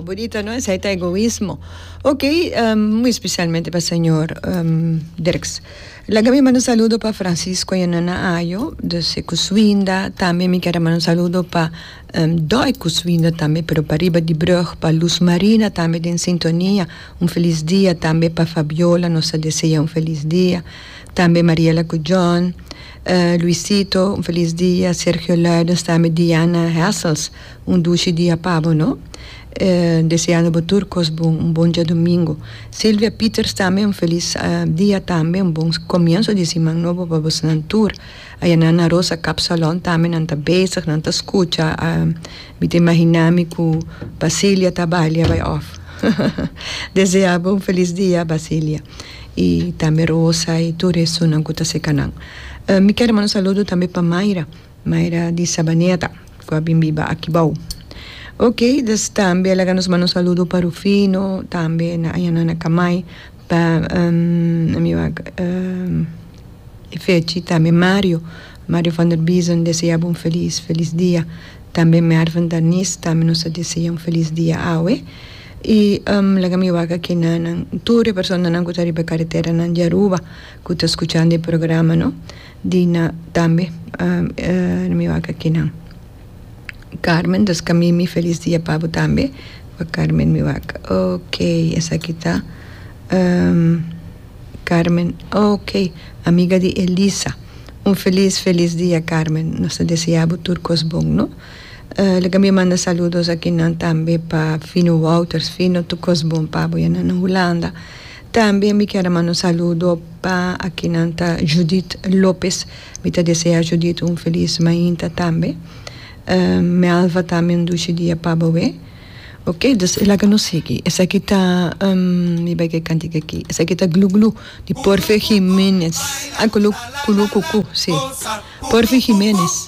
Bonita no esai ta egoismo ok muy especialmente pa señor Dirks laga mi manda un saludo pa Francisco y Nana Ayo dus e cuswinda tambe mi kier a manda un saludo pa dor e cuswinda tambe pero pariba di brug pa Luz Marina tambe den sintonia un feliz dia tambe pa Fabiola nos a desea un feliz dia tambe Mariela cu John. Luisito, un felis dia. Sergio Luijden sta mi Diana Hessels, un dushi dia pa bo no. Deseando bo tur kos bon, un bon diadomingo. Silvia Pieters tambe un felis dia tambe, un bon komienso di siman nobo pa bosnan tur. Ayana Ana Rosa Kap Salon tambe nan ta bezig, nan ta skucha, mi ta imaginá mi ku Basilia ta balia bai òf. Desea bo un felis dia Basilia. y tambe Rosa y tur e sunan cu ta cerca nan. Mi quier manda un saludo tambe pa Mayra, Mayra di Sabaneta cu a bin biba aki bao. Ok dus tambe a laga nos manda un saludo pa Rufino tambe na Ayanana Kamai, pa e fechi tambe Mario, Mario van der Biezen desea bo un feliz feliz dia, tambe Merven Darnis tambe nos ta desea un feliz dia awe. Y laga mi wak aki na nan tur e personanan cu ta riba e careteranan di Aruba cu ta scuchando e programa no, di na tambe na mi wak aki nan. Carmen, Dus ca mi mi feliz dia pa bo tambe, wak Carmen mi wak. Ok, esaki ta Carmen, ok, amiga di Elisa. Un feliz feliz dia Carmen, nos ta desea bo tur cos bon no. Lo ke mi manda saludos akinan tambe pa Fino Wouters. Fino, tur kos bon pa bo. Ya nan na Hulanda. Tambe mi kier a manda un saludo pa akinan ta Judith Lopez. Mi ta desea Judith un felis mainta tambe. Melva ta mi un dushi dia pa boe. Oke, dus laga nos sigui. Esaki ta, mi bai ke kantika aki. Esaki ta Glu Glu di Porfe Gimenez. Ai, kulu, kulu kuku, si. Porfe Gimenez.